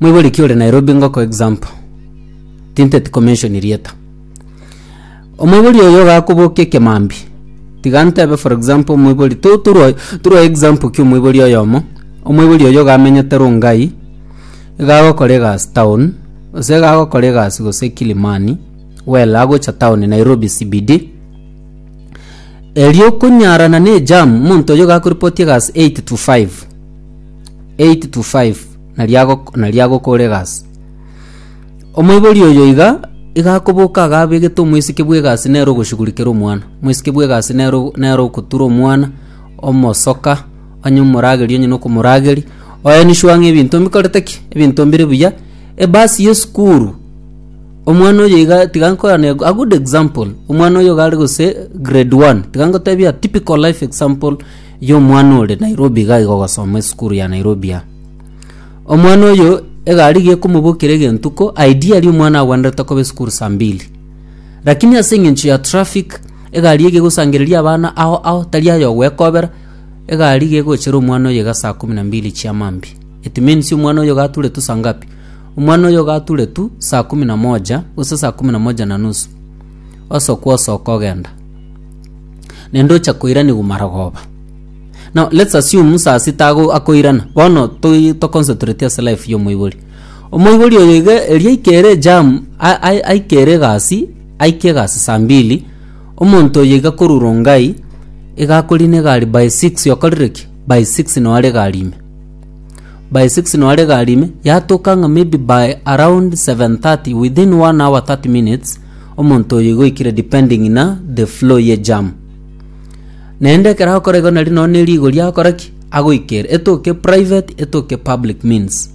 Moiboriki ore Nairobi ngoko example. Tinteti ko mention rieta. Omoibori oyo ogakobokia ekemambi. Tiga ntebe for example omoibori to turwa turwa example ki omoibori oyomo. Omoibori oyo ogamenyete Rongai egagokora egasi town gose egagokora egasi gose Kilimani well agocha town Nairobi CBD erio okonyarana ne ejam omonto oyo ogakorepoti egasi eight to five. 8-5, na riagok- na riagokoregasi. Omoibori oyo iga iga akoboka agabegete omwesike bw'egasi nere ogoshugurikera omwana. Omwesike bw'egasi nere o- nere ogotura omwana, omosoka, onye omorageri onye nokomorageri, oenishwa ng'a ebinto mbikorete ki? Ebinto mbire buya. Ebasi y'esukuru, omwana oyo iga tiga nkorane a good example, omwana oyo iga are gose grade one, tiga ngotebia typical life example. Yo omwana ore Nairobi iga aiga ogosoma esukuru ya Nairobi ya. Omwana oyo egari iga ekomobokera egentuko ideally omwana agwenerete koba esukuru saa mbili. Lakini ase eng'encho ya traffic egari iga egosangereria abana ao ao tari aye ogwekobera egari iga egochera omwana oyo iga saa kumi na mbili chia mambia. It means omwana oyo iga ature tu saa ngapi? Omwana oyo iga ature tu saa kumi na moja gose saa kumi na moja na nusu osokwa osoka ogenda. nende ocha koiranigwa marogoba. Now let's assume musasi tago akoirana. Bono toi to concentrate ase life ya omoibori. Omoibori oyo iga eria aikere jam a- a- aikere egasi aike egasi saa mbili omonto oyo iga korwa Rongai iga akorina egari by six okorire ki by six noo are egari ime by six noo are egari ime yatoka ng'a maybe by around seven thirty within one hour thirty minutes Omonto oyo igo oikire depending na the flow ye jam. Naende ekero akora igo nari nonya ne rigori akora ki? Agoikera etoke private etoke public means.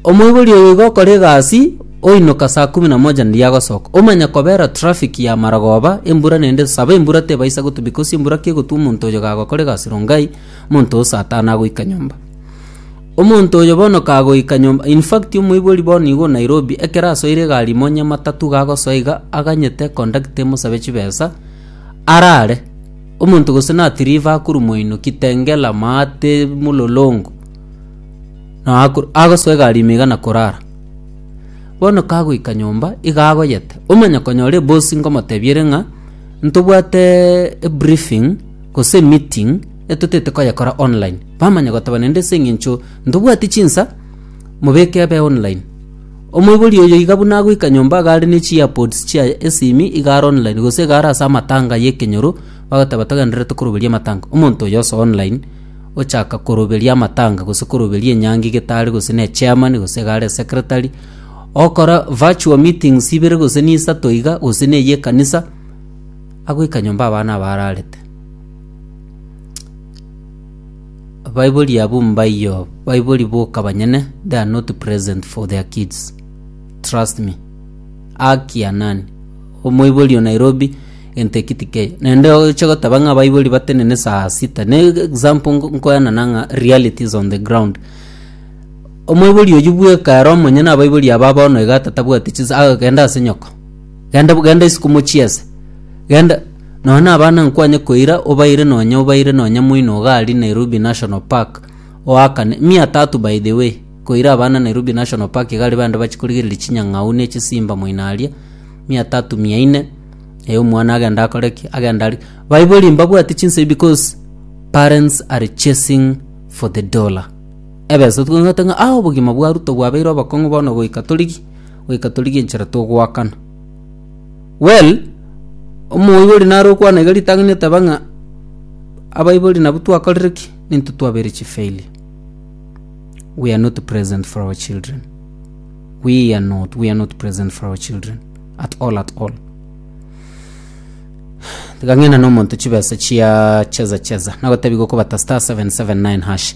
Omoibori oyo igo okora egasi oinoka saa kumi na moja nari agosoka. Omanya kobera traffic ya Maragoba embura naende esaba embura tebaisa gotwa because embura kegotwa omonto oyo gagokora egasi Rongai omonto oo saa tano agoika nyomba. Omonto oyo bono kagoika nyomba in fact omoibori bono igo Nairobi ekero asoire egari imo nyamatatu gagosoa iga aganyete conductor emosabe chibesa arare omonto gose nati Liverpool moino Kitengela maate Mulolongo noe akoro agosoa egari ime iga na korara bono kagoika nyomba iga agoyete omanya konyora eboss ngomotebia ere ng'a ntobwate ebriefing gose emeeting etotete koyekora online Bamanya goteba nende ase engencho ntobwati chinsa, mobeke abe online. Omoibori oyo iga buna agoika nyomba iga are ne chi earpods chiaye ase ime iga are online gose iga are ase amatanga y'ekenyoro bagoteba togendererete koroberia amatanga. Omonto oyo ase online ochaka koroberia amatanga gose koroberia enyangi getari gose ne chairman gose iga are esecretary ogokora virtual meetings ibere gose ne isato iga gose ne eyia ekanisa agoika nyomba abana abararete. Abaibori abwo mbaiyo baibori boka banyene they are not present for their kids trust me haki ya nani omoibori o Nairobi egento eki tikeyo naende oche goteba ng'a abaibori batenene saa sita ne example nko- nkoyana nang'a realities on the ground omoibori oyio bweka ere omonyene abaibori aba bono iga tatabwati chisa agenda ase nyoko genda genda isiko mochiese genda nonya na abana nkwanye koira obaire nonya obaire nonya moino gari Nairobi National Park oakane mia tatu by the way koira abana Nairobi National Park gari bande bachikorigereria chinyang'au ne chisimba moino aria mia tatu mia ine eyo omwana agenda akore ki agenda ari baibori mbabwate chinsei because parents are chasing for the dollar ebesa tukang'ata ng'a ah obogima bwa ruto bwabeire obokong'u bono goika torigi goika torigie enchera togoakana. Well, omoibori nare okwana iga ritang'ani oteba ng'a abaibori nabwo twakorire ki? Ninto twabeire chi failure. We are not present for our children. We are not, we are not present for our children at all at all. Tigang'ina nomonto chibesa chia cheza cheza nagotebi gokobata star 779 hash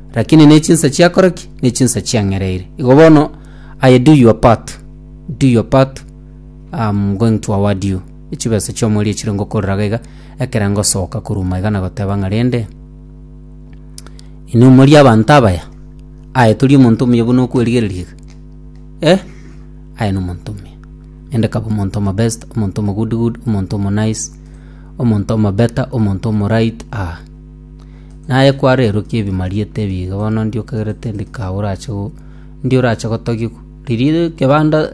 Lakini ne chinsa chiakora ki? Ne chinsa chiang'ereire. Igo bono, aye do your part. Do your part. I'm going to award you. Echibesa chi'omori echire ngokorera iga iga, ekere ngosoka koruma iga na goteba ng'a rende, inwe mori abanto abaya? Aye tori omonto omuya buna okwerigereria iga? Eh, aye nomonto omuya. Rende kaba omonto omobest, omonto omogood good, omonto omonice, omonto omobetter, omonto omoraiti, ah. Naye kwarerokia ebimariete ebi iga bono ndiokagerete ndikaurache go ndiorache gotogigwa. Riria egebanda.